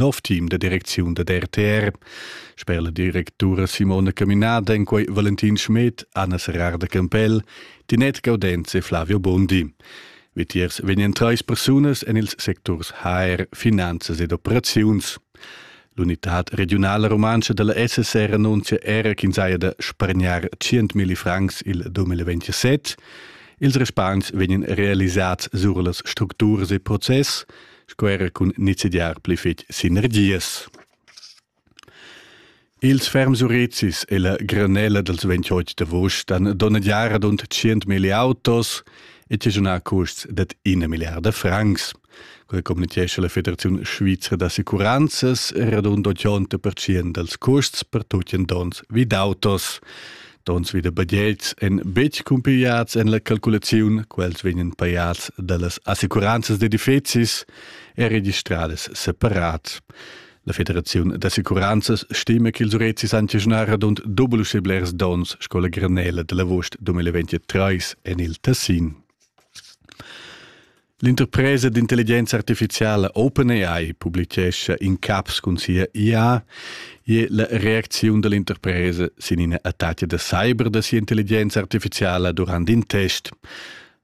nov team da direcziun da RTR. Sper la directura Simona Caminada en quei Valentin Schmidt, Anna Serrar de Campell, Tinette Gaudenz e Flavio Bondi. Vitiers vegnan treis persunas en ils secturs HR, finanzas ed operaziuns. L'unitad regionala rumantscha della SSR annunzia era ch'ins haja da spargnar 100.000 francs il 2027. Ils respons vegnan realisats sur las structuras e process, sco era cun nizidiar pli fetg sinergias. Ils ferms urezis e la granella dals 28 d'agost han donnegiar ad und 100.000 autos e tigiunà custs dat una miliarda francs. Quella communitgescha la Federazione Svizra d'Assicuranzas radund 80% dals custs per tutti donns vid autos. Tons vi da badells en betg cumpigliads en la calculaziun, quels vegnan pajats da las assicuranzas d'edifizis e registradas separat. La Federaziun d'assicuranzas stima ch'ils urezis han giagnà radund doble uschè blers donns sco la granella da l'avuст 2023 en il Tessin. L'interpresa d'intelligenza artificiala OpenAI publicescha in caps cun sia IA e la reacziun dall'interpresa sin ina attacca da cyber da sia intelligenza artificiala durant in test.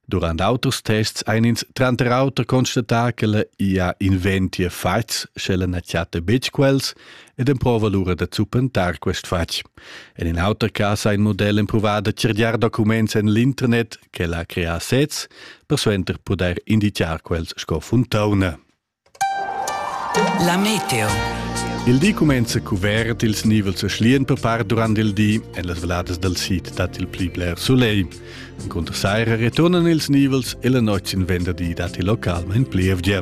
Durant auters tests ein ins tranter auter constatà che la IA inventia fatgs, sch'ella na chatta betg quels ed emprova lura da zuppentar quest fatg. En in auter cas ha il model empruvà da cirgiar documents en l'internet ch'el ha creà sez, persuenter pudair indicar quels sco funtauna. La meteo. Il di cumenza cuvert, ils nivels schlian per part durant il di, en las valadas dal sid dat il pli bler solegl. Cunter saira returnan ils nivels e la notg sin venderdi dat il local in plievgia.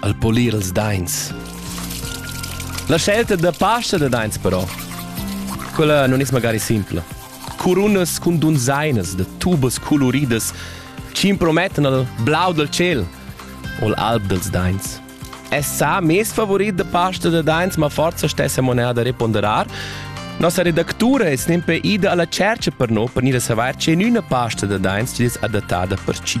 al polir ils dains. La scelta da pasta da dains però, quella non es magari simpla. Curunas cun dunzainas da tubas coloridas c'impromettan al blau del ciel o l'alb dels dains. Es sa mes favorit de pasta da dains, ma forza stessa moneda reponderar. Nossa redactura es nempe ida alla cerca per no per gnir a savair che üna pasta da dains es adattada per ci.